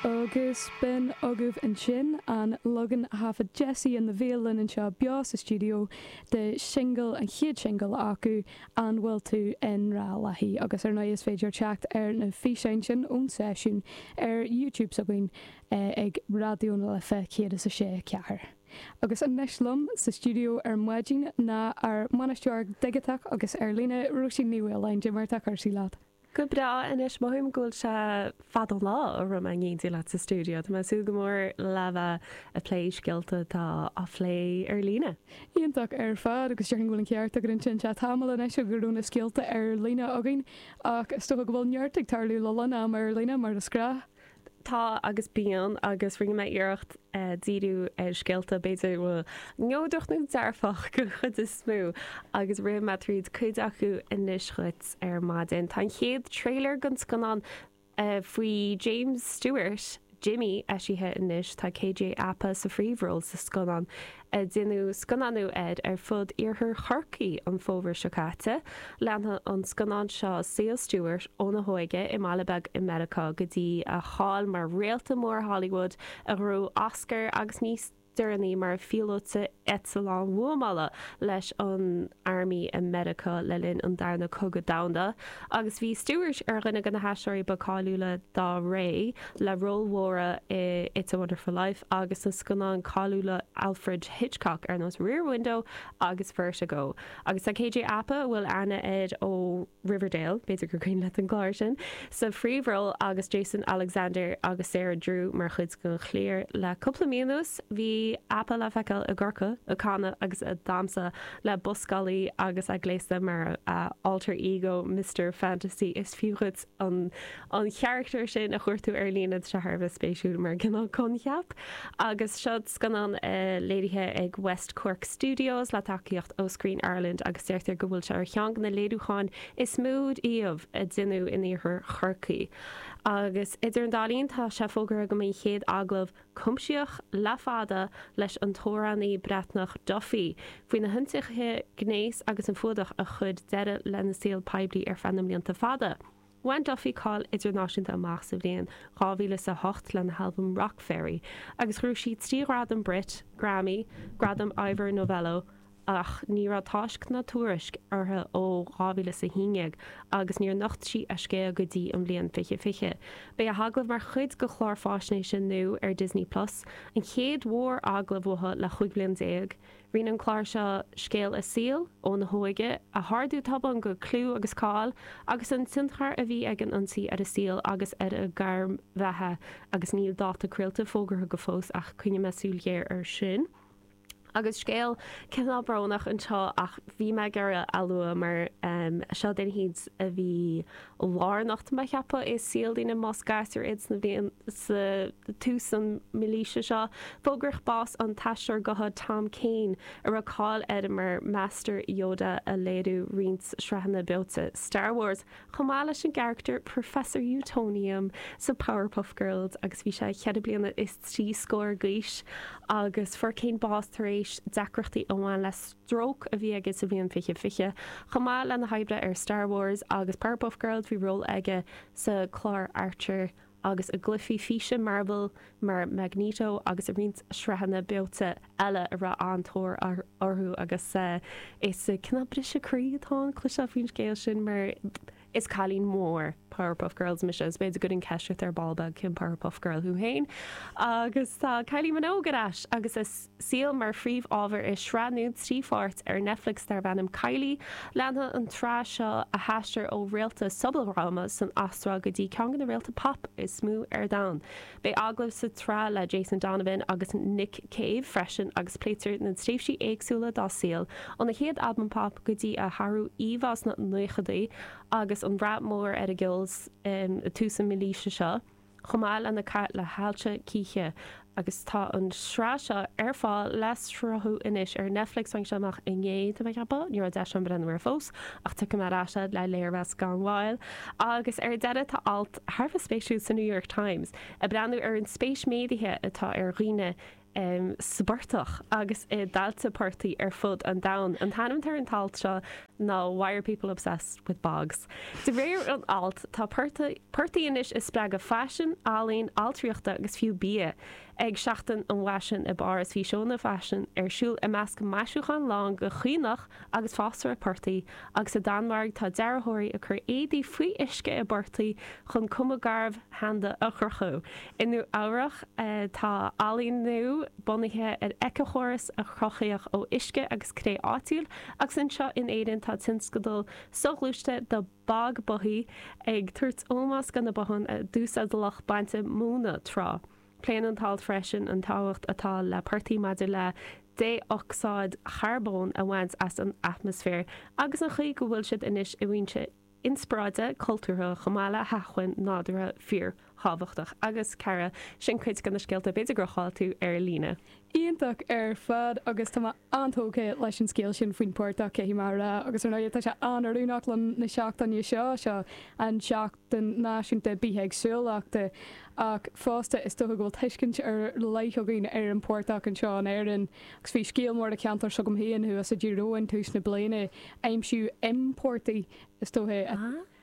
Agus b'in agaibh ansin an leagan a thaifead Jessie and the Veil linn anseo beo sa stiúideo de shingil, an chéad singil acu, An Bhfuil Tú i nGrá Léithi? Agus ar ndóigh is féidir teacht ar na físeáin sin ón seisiún ar YouTube s'againn ag Raidió na Life 106.4. Agus anois liom sa stiúideo ar maidin ná ár mbainisteoir digiteach agus ar líne, Róisín Ní Mhaoláin. Cad é mar atá cúrsaí leat. Go breá anois, mothaím go bhfuil sé fada an lá ó raibh mé in éindí leat sa stiúideo. Tá mé ag súil go mór le bheith ag plé scéalta atá á phlé ar líne. Iontach ar fad agus déarfainn go bhfuil an ceart agat ansin. Sea, tamall anois ó raibh na scéalta ar líne againn ach is dócha go bhfuil neart ag tarlú le lán ama ar líne mar is gnách. Tá agus bíonn agus rinne mé iarracht díriú ar scéalta b'fhéidir neodrach nó dearfach den chuid is mó agus rithfidh mé tríd cuid acu anois dhuit ar maidin. Tá an chéad trailer den scannán faoi James Stewart, Jimmy, eisithe anois. Tá KJ Apa sa phríomhról sa scannán. a deineadh scannánú air ar fud iarthar Chorcaí an fómhar seo caite. Leanfaidh an scannán seo saol Stewart óna hóige i mbaile beag i Meiriceá go dtí a cháil mar réalta mór Hollywood a ghnóthaigh Oscar agus níos deireanaí mar phíolóta eitleáin bhuamála leis an Army i Meiriceá le linn an darna cogadh domhanda agus bhí Stewart ar dhuine de na haisteoirí ba cáiliúla dá ré. le róil mhóra i It's a Wonderful Life agus sna scannáin cháiliúla Alfred Hitchcock ar nós Rear Window agus Vertigo. Agus tá KJ Apa, a bhfuil aithne air ó Riverdale, b'fhéidir gur cuimhin leat an clár sin, sa phríomhról agus Jason Alexander agus Sarah Drew mar chuid den chliar. Le cúpla mí anuas bhí Apa le feiceáil i gCorcaigh ag canadh agus ag damhsa le buscálaí agus é gléasta mar a alter ego Mister Fantasy, is fiú dhuit an an carachtar sin a chuardú ar líne tá sé thar a bheith spéisiúil mar cineál coincheap agus seo scannán léirithe ag West Cork Studios le tacaíocht ó Screen Ireland agus deirtear go bhfuil sé ar cheann de na léiriúcháin is mó riamh a deineadh in iarthar Chorcaí agus idir an dá linn tá sé fógartha go mbeidh an chéad agallamh Cuimsitheach le fada leis an t-amhránaí Breatnach Duffy faoi na hionsaithe gnéis agus an fuadach a chuir deireadh lena saol poiblí ar feadh na mblianta fada. Bhain Duffy cáil idirnáisiúnta amach sa bhliain 2008 lena halbam Rockferry agus ghnóthaigh sí trí ghradam Brit, Grammy, Gradam Ivor Novello, ach ní raibh táisc ná tuairisc uirthi ó 2011 agus níor nocht sí a scéal go dtí an bhliain fiche fiche. Beidh a hagallamh mar chuid de chlár fáisnéise nua ar Disney Plus, an chéad mhóragallamh uaithi le chúig bhliain déag. Rianóidh an clár seo scéal a saoil, óna hóige, a hardú tobann go clú agus cáil, agus an tionchar a bhí ag an ionsaí ar a saol agus ar a gairm bheatha, agus níl dáta craolta fógartha go fós ach coinneoidh mé súil ghéar ar sin. Agus scéal cineál brónach anseo ach bhí mé ag iarraidh a lua mar seo duine a bhí lárnach de mo cheapadh i saol daoine más gasúr iad sna blianta tús an mílaoise seo. Fógraíodh bás an t-aisteoir gutha Tom Kane a raibh cáil air mar Master Yoda a léiriú i roinnt sraitheanna beoite Star Wars. chomh maith leis an gcarachtar Professor Utonium sa Powerpuff Girls agus bhí sé cheithre bliana is trí scór d'aois agus fuair Kane bás tar éis deacrachtaí a bhain le stróc a bhí aige sa bhliain fiche fiche. Chomh maith lena obair ar Star Wars agus Powerpuff Girls, bhí ról aige sa gclár Archer agus i gcluichí físe Marvel mar Magneto agus i roinnt sraitheanna beoite eile a raibh an-tóir orthu agus is cineál briseadh croí atá ann cloisteáil faoin scéal sin mar is cailín mór Powerpuff Girls mise agus b'fhéidir go ndéanfaidh mé ceistiú ort ar ball beag cén Powerpuff Girl thú féin agus tá Kylie Minogue ar ais agus a saol mar phríomhábhar i sraith nua trí pháirt ar Netflix darb ainm Kylie. Leanfaidh an tsraith seo a haistear ó réalta sobaldhráma san Astráil go dtí ceann de na réalta pop is mó ar domhan. Beidh agallaimh sa tsraith le Jason Donovan agus Nick Cave freisin agus pléitear na tréimhsí éagsúla dá saol, óna chéad albam pop go dtí a hathrú íomhá sna 90idí agus an rath mór ar a ceol i dtús an mílaoise seo. chomh maith lena cath le hailse chíche agus tá an sraith seo ar fáil le sruthú anois ar Netflix tháinig sé amach inné de mo cheapadh, ní raibh deis agam breathnú air fós ach tiocfaidh mé ar ais le léirmheas gan mhoill agus ar deireadh tá alt thar a bheith spéisiúil sa New York Times ag breathnú ar an spéis méadaithe atá ag daoine sa bportach agus i dtailte portaigh ar fud an domhain. An t-ainm atá ar an t-alt seo ná Why Are People Obsessed With Bogs? De réir an ailt, tá portaigh anois ag spreagadh faisin, ealaín, ailtireachta agus fiú bia. Ag Seachtain an Fhaisin i bPáras bhí seónna faisin ar siúl i measc maisiúchán lán de chaonach agus fásra portaigh, agus sa Danmhairg tá dearthóirí ag cur éadaí faoi uisce i bportaigh chun cuma garbh sheanda a chruthú. I Nua Eabhrach tá ealaín nua bunaithe ar éiceachóras a cruthaíodh ó uisce agus cré áitiúil agus anseo in Éirinn tá tionscadal soghluaiste The Bog Bothy ag tabhairt ómós do na botháin a d'úsáid lucht bainte móna tráth. Pléann an t-alt freisin an tábhacht atá le portaigh maidir le dé-ocsáid charbóin a bhaint as an atmaisféar agus an chaoi go bhfuil siad anois ina bhfoinse inspioráide cultúrtha chomh maith le hacmhainn nádúrtha fíorthábhachtach agus cara, sin cuid de na scéalta b'fhéidir gur chaill tú ar líne. Iontach ar fad agus tá mé an-tógtha leis an scéal sin faoin bportach, caithfidh mé a rá, agus ar ndóigh tá sé an-oiriúnach le linn na seachtaine seo, seo an tSeachtain Náisiúnta Bithéagsúlachta, ach fosta is dócha go bhfuil tuiscint ar leith againn ar an bportach anseo in Éirinn. Agus bhí scéal mór ó cheantar s'agam féin thuas i dTír Eoghain tús na bliana, aimsíodh im portaigh, is dóiche,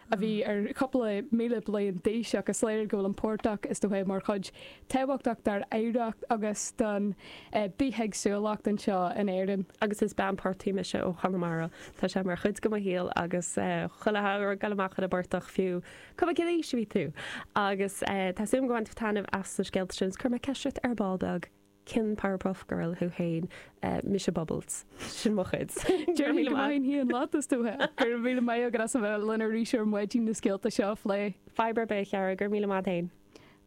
a bhí ar chúpla míle bliain d'aois ach is léir go bhfuil an portach, is dóiche, mar chuid tábhachtach dár oidhreacht agus don bithéagsúlacht anseo in Éirinn. Agus is bean portaigh mise ó Chonamara, tá sé mar chuid de mo shaol agus chuile shamhradh ag dul amach ar an bportach fiú cuma cén aois a bhí tú. Agus tá súil agam gur bhain tú taitneamh as na scéalta sin is chuir mé ceist ort ar ball beag. Cén Powerpuff Girl thú fhéin? Mise Bubbles. Sin mo chuid. Go raibh míle maith. Déarfainn hí an lot is dóiche. Go raibh míle maith agat as a bheith linn arís ar maidin na scéalta seo a phlé. Fadhb ar bith a Cheara, go raibh míle maith fhéin.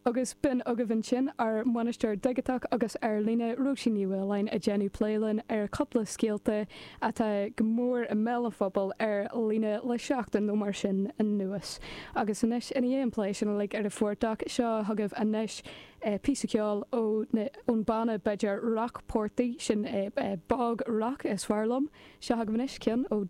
Agus b'in agaibh ansin ár mbainisteoir digiteach agus ar líne, Róisín Ní Mhaoláin ag déanamh plé linn ar cúpla scéalta atá go mór i mbéal an phobail ar líne le seachtain nó mar sin anuas. Agus anois ina dhiaidh an plé sin uilig ar an bportach seo chugaibh anois, é píosa ceoil ó na ón banna b'fhéidir rock portaigh sin é bog rock is fearr liom seo chugaibh anois ceann ó